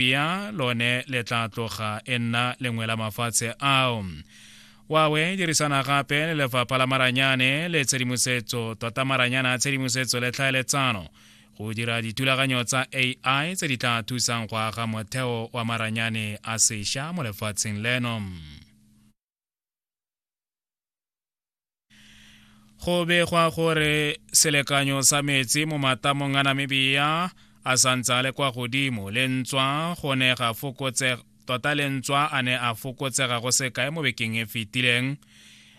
Namibia lone le tla tloga e nna lengwe la mafatshe ao wawe dirisana gape le lefapha la maranyane le tshedimosetso tota maranyane a tshedimosetso le tlhaeletsano go dira dithulaganyo tsa ai tse di tla thusang go aga motheo wa maranyane a sesha mo lefatsheng leno go begwa gore selekanyo sa metsi mo matamong a namibia a santse a le kwa godimo le ntswa go ne ga fokotse tota le ntswa a ne a fokotsega go sekae mo bekeng e fetileng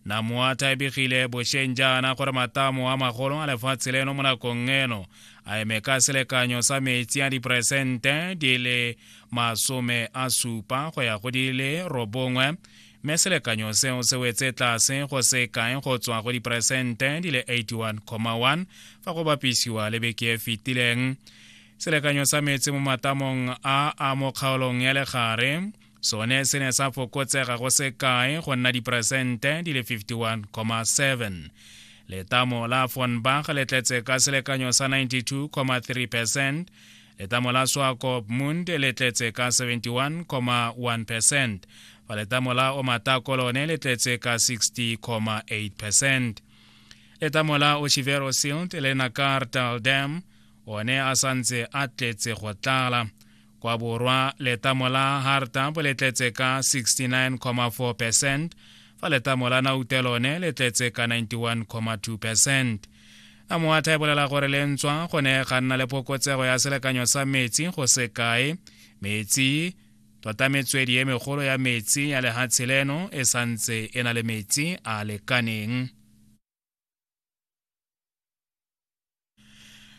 namoata e begile bosheng jaana gore matamo a magolo a lefatshe leno mo nakong eno a eme ka selekanyo sa metsi a diperesente di le masome a supa go ya go di le robongwe mme selekanyo seo se wetse tlase go se kae go tswa go diperesente di le 81,1 fa go bapisiwa le beke e fetileng selekanyo sa metsi mo matamong a a mo kgaolong ya legare sone se ne sa fokotsega go se kae go nna diperesente di le 51,7 letamo la fonbach le tletse ka selekanyo sa 92,3 percent Letamo la Swakop Mund le tletse ka 71,1 percent fa letamo la Omatako lone le tletse ka 60,8 percent. Letamo la Oshivero Silt le Nakartal Dam one a santse a tletse go tlala kwa borwa letamo la hartab le tletse ka 69,4 percent fa letamo la naute lone le tletse ka 91,2 percent a moatha e bolela gore le ntswa go ne ga nna le phokotsego ya selekanyo sa metsi go se kae metsi tota metswedi e megolo ya metsi ya lehatshe leno e santse e na le metsi a lekaneng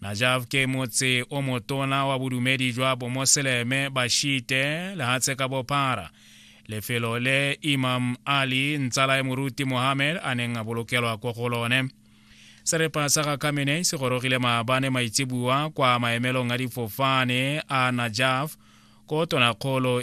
Najaf ke motse o motona wa bodumedi jwa bomoseleme ba Shite lehatshe ka bophara. Lefelo le Imam Ali ntsala ya moruti Mohammed a neng a bolokelwa ko go lone. Serepa sa ga Khamenei se gorogile maabane maitsebua kwa maemelong a difofane a Najaf ko tonakgolo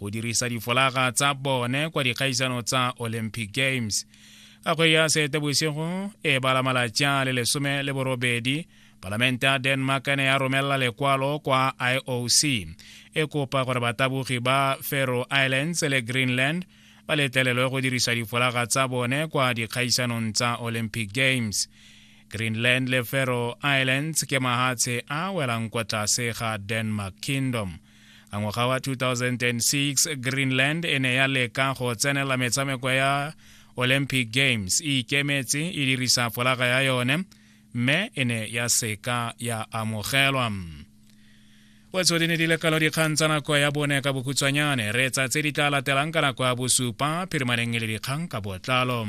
go dirisa difolaga tsa bone kwa dikgaisano tsa olympic games ka kgwedi ya seetebosigo e bala malatsi a le lesome le borobedi palamente ya denmark ne ya romela lekwalo kwa ioc e kopa gore batabogi ba faroe islands le greenland ba letlelelwe go dirisa difolaga tsa bone kwa dikgaisanong tsa olympic games greenland le faroe islands ke mahatshe a welang kwa tlase ga denmark kingdom a ngwaga wa 2006 greenland e ne ya leka go tsenela metshameko ya olympic games e ikemetse e dirisa folaga ya yone mme e ne ya seka ya amogelwa wetso di ne di lekalo dikgang tsa nako ya bone ka bokhutshwanyane re tsa tse di tla latelang ka nako ya bosupa phirimaneng e le dikgang ka botlalo